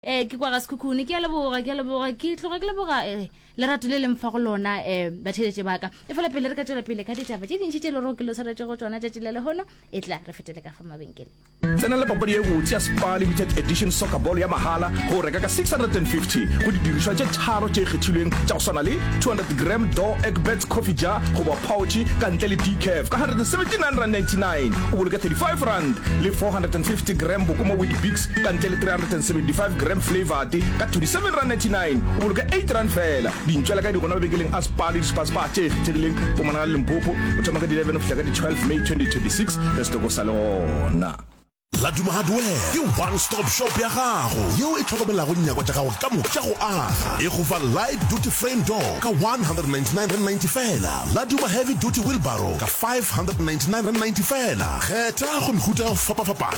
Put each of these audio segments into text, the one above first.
Ee, ke kwa ga Sekhukhune. Ke a leboga, ke a leboga. Ke tloga ke leboga eh, lerato le leng fa go lona eh, batheeletše ba ka. Efela pele re ka tšwela pele ka ditaba tše dintši tše le rego ke lo swaretšego tšona tšatši la lehono, e tla re fetele ka fa mabenkeleng. Tsena le papadi ye botse ya Spar Limited Edition Soccer Ball ya mahala ge o reka ka 650 go didirišwa tše tharo tše kgethilweng tša go swana le 200 gram Door Egbert Coffee Jar goba Pouch ka ntle le decaf ka R179.99 o boloke R35 le 450 gram Bokoma Weet Bix ka ntle le 375 gram flavour te ka 27 rand 99 o boloka 8 rand fela dintšwela ka di gona mabekeleng a spa le dispaspa tše kgethegileng fomana ga limpopo o thoma ka di 11 go fihla ka di 12 may 2026 re se toko sa le gona Laduma Hardware ke one stop shop ya gago yeo e tlhokomelago nyakwa tša gago ka moka tša go aga. E go fa light duty frame door ka 199.90 fela, Laduma heavy duty wheelbarrow ka 599.90 fela. Kgetha go mehuta ya go fapafapana.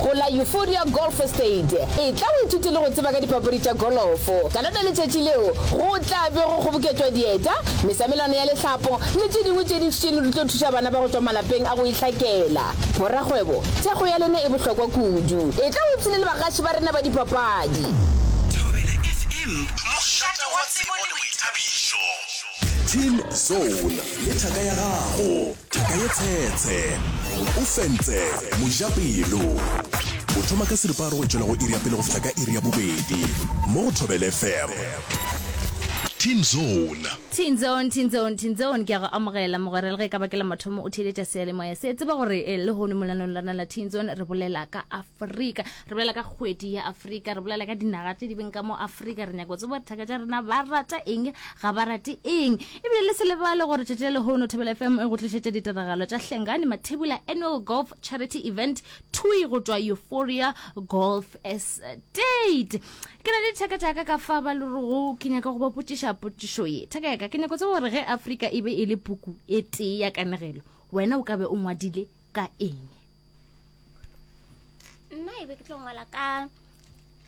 Go la Euphoria Golf Estate, etla o ithute le go tseba ka dipapadi tša golofo. Ka lona letšatši leo, go tla be go kgoboketšwa dieta, mesamelwana ya lehlapo le tše dingwe tše dintši tšeno di tlo thuša bana ba go tšwa malapeng a go itlhakela. Borakgwebo, thekgo ya lena e bohlokwa kudu. Etla o ipshine le bagaši ba rena ba dipapadi. Thobela FM, mošate wa tsebo le boithabišo. Team Zone le thaka ya gago. Thaka ye tshetshe. O fentse. Mojapelo. O thoma ka seripa a re go tšwela go iri ya pele go fihla ka iri ya bobedi. Mo go Thobele FM. Teen Zone. Teen Zone, Teen Zone, Teen Zone, ke a go amogela mogwera le ge e ka ba ke la mathomo o theeletša seyalemoya se. Tseba gore lehono molanong lona la Teen Zone re bolela ka a. afrika re bolela ka kgwedi ya afrika re bolela ka dinaga tse di beng ka mo afrika re nyako tsebo dithaka tša rena ba rata eng ga ba rate eng ebile le selebale gore tšatši le lehono thebele fm e go tlišetša ditiragalo tša hlengane mathebula annual golf charity event tui go tšwa euphoria golf estate ke na le dithaka tšaka ka fa ba lerogo ke nyaka go ba potšiša potšišo ye thaka yaka ke nyako tsebo gore ge afrika e be e le puku e tee ya kanegelo wena o ka be o ngwadile ka eng nna e be ke tlo ngwala ka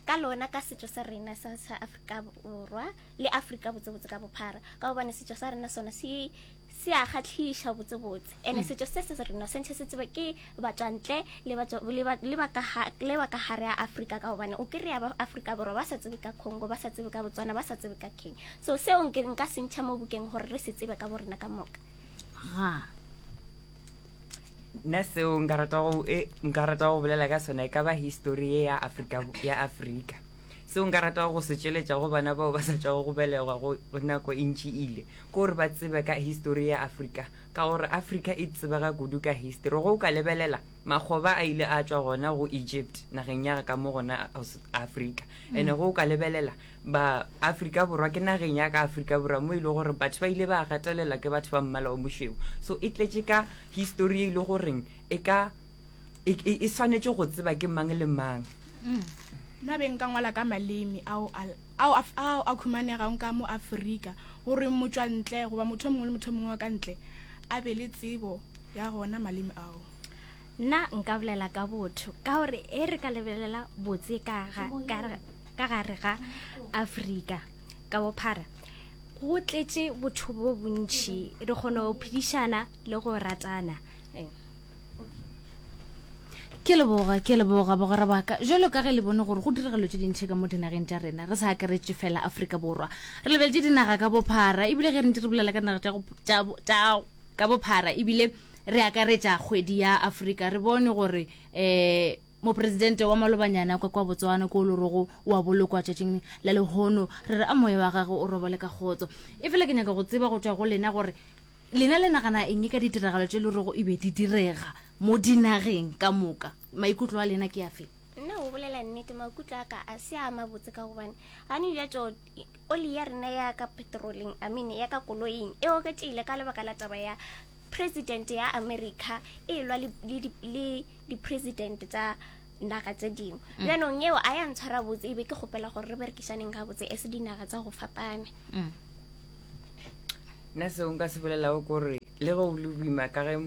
ka lona ka setšo sa rena sa sa afrika borwa le afrika botsebotse ka bophara ka gobane setšo sa rena sona se se a kgatlhiša botsebotse and-e mm. setšo se se rena sentšhe se tseba ke batswantle le ba ka gare ya afrika ka gobane o kry-a ba afrika borwa ba sa tsebe ka congo ba sa tsebe ka botswana ba sa tsebe ka kenya so seo nka sentšha mo bokeng gore re se tsebe ka borena ka moka nna seo nka rata go e nka rata go bolela ka sona e ka ba history ye ya Afrika ya Afrika seo nka rata go se tšweletša go bana bao ba sa tšwago go belegwa go nako e ntši ile ke gore ba tsebe ka history ya Afrika ka gore Afrika e tsebega kudu ka history go o ka lebelela makgoba a ile a tšwa gona go Egypt nageng ya ka mo gona Afrika ene go o ka lebelela ba Afrika Borwa ke nageng ya ka Afrika Borwa mo e le gore batho ba ile ba gatelela ke batho ba mmala o mošweu so e tletše ka history e le goreng e ka e, e, e swanetše go tseba ke mang le mang mm. nna be nka ngwala ka maleme ao ao a khumanegang ka mo aforika gore motswantle goba motho mongwe le motho mongwe wa ka ntle a be le tsebo ya gona maleme ao nna nka bolela ka botho ka gore e re ka lebelela botse ka ga ka gare ga afrika ka bophara go tletše botho bo bontšhi re kgona go phedišana le go ratana ke leboga ke leboga bogora baka jalo ka ge le bone gore go diragalo tse dintšhe ka mo dinageng tša rena re sa akaretse fela aforika borwa re lebeletse dinaga ka bophara ebile ge re ntse re bolela ka naga ka bophara ebile re akaretsa kgwedi ya aforika re bone gore um Mopresidente wa malobanyana kwa kwa Botswana ko o lorogo o a bolokwa tšatšing la lehono. Re re a moya wa gagwe o robale ka kgotso. Efela ke nyaka go tseba go tšwa go lena gore lena le nagana eng ka ditiragalo tše lorogo e be di direga mo dinageng ka moka. Maikutlo a lena ke afe? Nna go bolela nnete, maikutlo a ka a se a mabotse ka gobane gane bjatšo oli ya rena ya ka petroleng, amine, ya ka koloing e oketšegile ka lebaka la taba ya Presidente ya America e elwa le, le, le, le dipresidente tsa naga tse dingwe mm. bjanong yeo a ya ntshwara botse e be ke kgopela gore re berekišaneng ga botse e se dinaga tsa go fapana mm. nna seo nka se bolelago kore le ge o le boima ka ge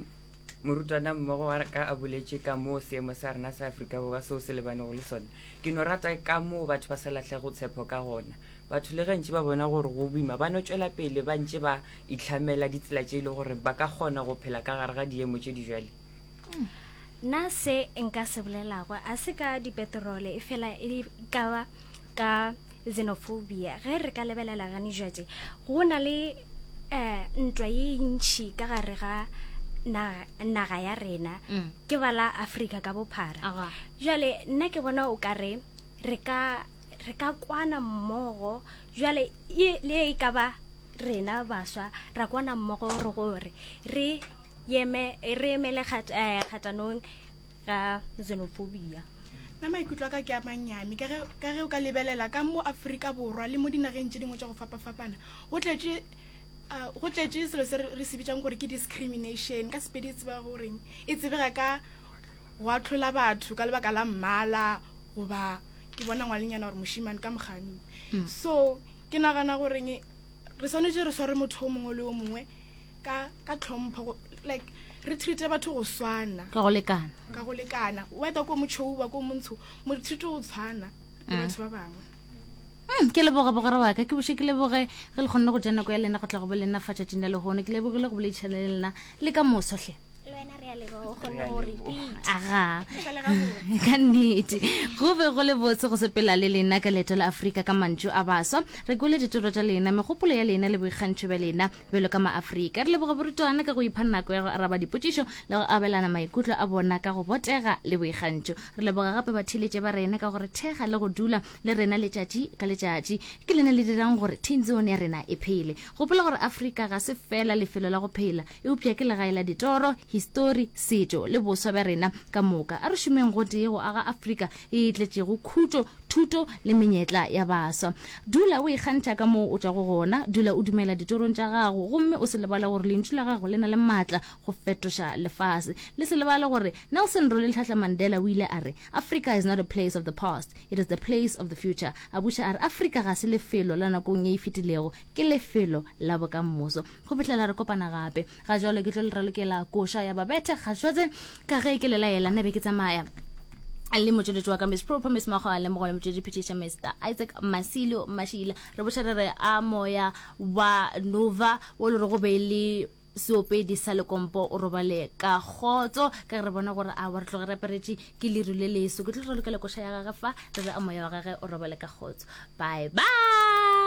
morutwana mmogo wa ka a boletse ka moo seemo sa rena sa aforika borwa seo se lebanego le sone ke no rata ka moo batho ba sa latlhego tshepo ka gona batho le gantši ba bona gore go boima ba no tswela pele ba ntse ba itlhamela ditsela tše e le gore ba ka kgona go phela ka gare ga diemo tše di jale? Na se nka se bolelago a se ka dipetrole e fela e ka ba ka xenophobia? Ge re ka lebelela gane jwatše go na le um ntwa ye ntšhi ka gare ga naga ya rena mm. ke ba la afrika ka bophara jale nna ke bona o ka re re ka kwana mmogo jale le e ka ba rena baswa ra kwana mmogo re gore re yeme re emele eh, kgatanong ga xenophobia nna maikutlo a ka ke a mannyane ka ge o ka lebelela ka mo aforika borwa le mo dinageng tse dingwe tsa go fapa-fapana go tletše ah, go tletše selo se re se bitsang gore ke discrimination ka sepedi e tseba goreng e tsebega ka go atlhola batho ka lebaka la mmala goba ke bona ngwalenyana gore moshimane ka mokganni mm. so Ke nagana gore nge re swanetše re sware motho o mongwe le o mongwe ka ka tlhompho go- like re treate batho go swana ka go lekana ka go lekana whether ko motšhou ba ko montsho mo re treate go tshwana le batho ba bangwe Mm, ke leboge bogore wa ka ke boše ke leboge ge le kgonne go ja nako ya lena go tla go bo lena fa tšatšing la lehono ke lebogile go boleditšhana le lena le ka moso hle aga ka nnete go be go le botse go sepela le lena ka leeto la afrika ka mantšu a baswa re kwele ditoro tša lena megopolo ya lena le boikgantšho bja lena bjalo ka maaferika re leboga borutwana ka go ipha nako ya go araba dipotšišo le go abelana maikutlo a bona ka go botega le boikgantšho re leboga gape batheletše ba rena ka gore thekga le go dula le rena letšatši ka letšatši ke lena le dirang gore tenzone ya rena e phele gopola gore afrika ga se fela lefelo la go phela Eupša ke legae la ditoro, histori, setšo le boswa bja rena ka moka. A re šomeng gotee go aga Afrika e e tletšego khutšo, thuto le menyetla ya baswa. Dula o ikgantšha ka moo o tšwago gona. Dula o dumela ditorong tša gago gomme o se lebale gore lentšu la gago le na le matla go fetoša lefase. Le se lebale gore Nelson Rolihlahla Mandela o ile a re, Africa is not a place of the past, it is the place of the future. A buša a re, Afrika ga se lefelo la nakong ye e fetilego, Ke lefelo la bokammoso. Go fihlela re kopana gape. Ga jalo ke tlo le ralokela koša ya babethe kgašwetse ka ge ke lelaela nna be ke tsamaya le motšweletši wa ka miss proper miss mago a lemogo le motšwedi phetiša mr isaac masilo mašila re boša re re a moya wa nova o le re go be le seopedi sa lekompo o robale ka kgotso ka re bona gore a wa re tloge re aperetše ke leru le leso ke tlo re lokela koša ya gage fa re re a moya wa gage o robale ka kgotso bye bye